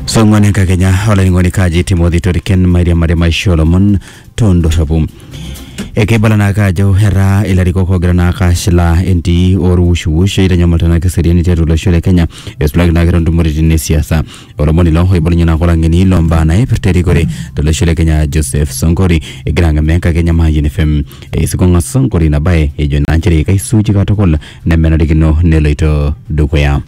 song'one kakenya olainining'oni kaji timothy toriken mairia mare maisho lomon tondorropu ekeibala naake ajo etaa ilarikok ogira naake ashilaa entii orwushwush eitanyamal tenake eseriani tiatua olosho le kenya eisulaki naake tontumoritin esiasa olomoni ilo oibalunye naake olang'eni lombaa naipirta erikore tolosho le kenya joseph sonkori egira ang'amaa enkakenya mayian fm eisikong'a sonkori ina baye ejo naa nchere kaisuuji katukul nemenarikino neloito dukuya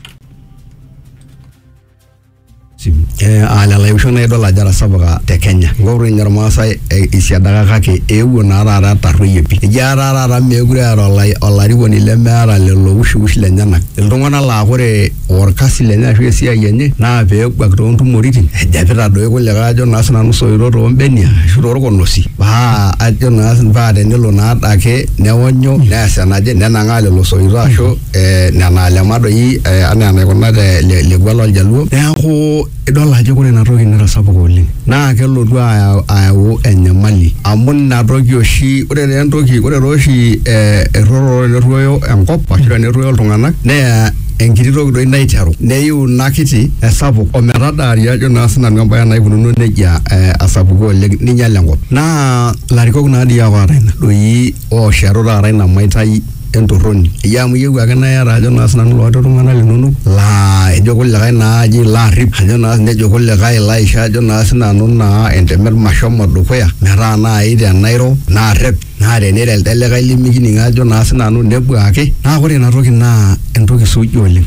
ana laisho naa idol ajo etasapuka te Kenya. Ng'oru ninye Irmaasai eisiadaka kake eewuo naa taata etarruoyie pii. Eji etaa taata meekure eeta olarikoni lemeeta lelo wushiwush lenyenak. Iltung'anak laa ore orkasi lenye ashu esiai enye naa peebuak too ntumoritin ejepita doi kulikae ajo naa sinanu soito too mbenia ashu too lkonosi paa ajo naa paa tenelo naa adake neonyu neas enaje nenang'aa lelo soito ashu eh, nena alema doi eh, anaa enaikuna te le- lekua loljaluo neeku idol ajo ore ina toki netasapuka oleng naa kelotu ayau- ayau enyamali amu ina toki oshi ore taa entoki ore taa oshi eh, erruoyo nerruoyo enkop ashu tenerruoyo iltung'anak neya enkiti toki doi naiteru neyiu ina kiti esapuk ometadaari ajo naa sinanu embaye naikununo nejia eh, asapuku oleng ninyial enkop naa ilarikok naa dii apa oota ina doi ooshetu taata ina maitai entorroni eyie amu iyieu ake naa iyata ajo naa sinanu ilooti iltung'anak linonok laa ejo kulikae naaji ilo arrip ajo naa nejo kulikae ilo aisho ajo naa sinanu naa entemet mashomo dukuya metaa naai tenairo narrep naa teniro elde likae limikining ajo naa sinanu nebuaki naa kore inatoki naa entoki suuji oleng.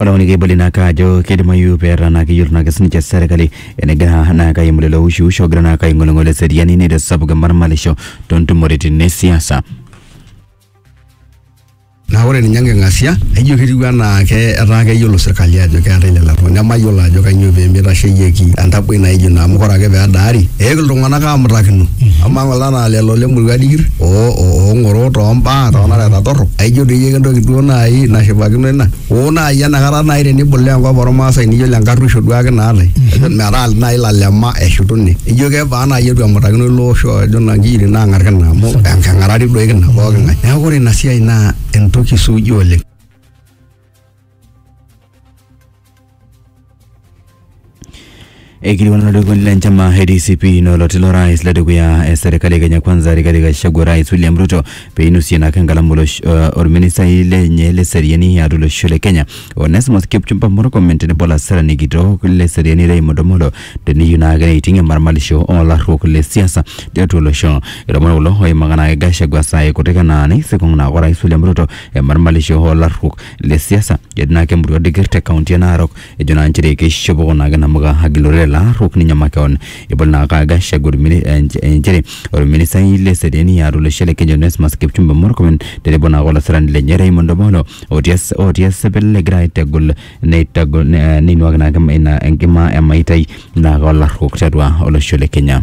Ore amu kibali naa kaa ajo keidimayu peeta naa keyiolo naake sininche serkali enegira naa kaimu lelo ushuush ogira naa kaing'oling'ol eseriani neitasapuk emarmalisho toontumoritin e siasa. Naa ore ninye enking'asia naijo ketiu anaa ke etaa keyiolo sirkali ajo keetae lelo apurrok nemayiolo ajo kanyoo pee meitasheyieki entaboi naijo ina amu ore ake pee edaari eewuo iltung'anak aamutakino amaa ng'ole anaa lelo lemurua dikir oong'oro toombaa toonareta torrok aijo doi ake entoki duo naaji nashipakino ina oo naaji enakata naaji tenibulaa enkop ormaasai niyiolo enkarruisho duake naatae ejo metaa naaji ilalema eshutuni ijo kebaa naaji etu emutakino ilo osho ajo naa inkiyietin naang'ar kina amu enking'urari duo kina poking'ae neeku ore ina siai naa entoki suuji oleng. ekiliwana lolikoni la njama adcp noloti lo rais ladikuya e serikali ya kenya kwanza rikali gachagua rais william ruto peinusie nakangalamu uh, orministai lenye le seriani atu losho le kenya onesmus kipchumba murkomen tenebo laserani kitok le seriani raymond omolo teniyieu naa kira iting emarmalisho olarruok le siasa tiatua olosho ilomon kulo oimaka naake gachagua saai kutik anaa neisikong naake orais william ruto emarmalisho oolarruok le siasa ejo naa kemurua digir te kaunti e Narok ejo naa nchere keishopo kuna ake namuka agilore lelo arruok ninye makeon ebol naa ake Gachagua ormini- eh, nch- eh, nchere orministai le seriani atua olosho le Kenya Onesmus Kipchumba Murkomen tenebo naa olasirani lenye Raymond Omolo otii es- otii esipil egira aitegol neitagol ne- neinuaki naa ake ina enkima emaitai naa ake olarruok tiatua olosho le Kenya.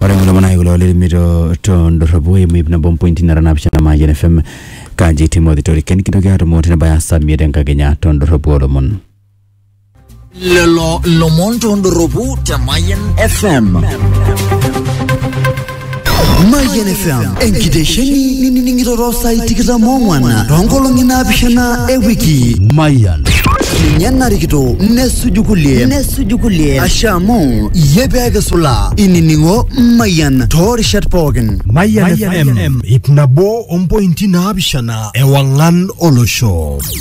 ore kulo manai kulo lirimi to to ndorropu eimu ip nabo mpointi nara naapishana Mayian FM kaji Timothy Toriken kintoki aatumo tenebaya saa imiet enkakenya to ndorropu oolomon. lelo lomon tondoropu te Mayan FM. Mayan FM, enkitesheni ninining'ito too saai tikitam oong'wan too nkolong'i naapishana e wiki. Mayan. Ninye narikito nesuju kulie. Nesuju suju kulie ashe amu iyie pee kisula inining'o mayian toorishat pookin Mayian FM, ip nabo ompointi naapishana ewang'an olosho.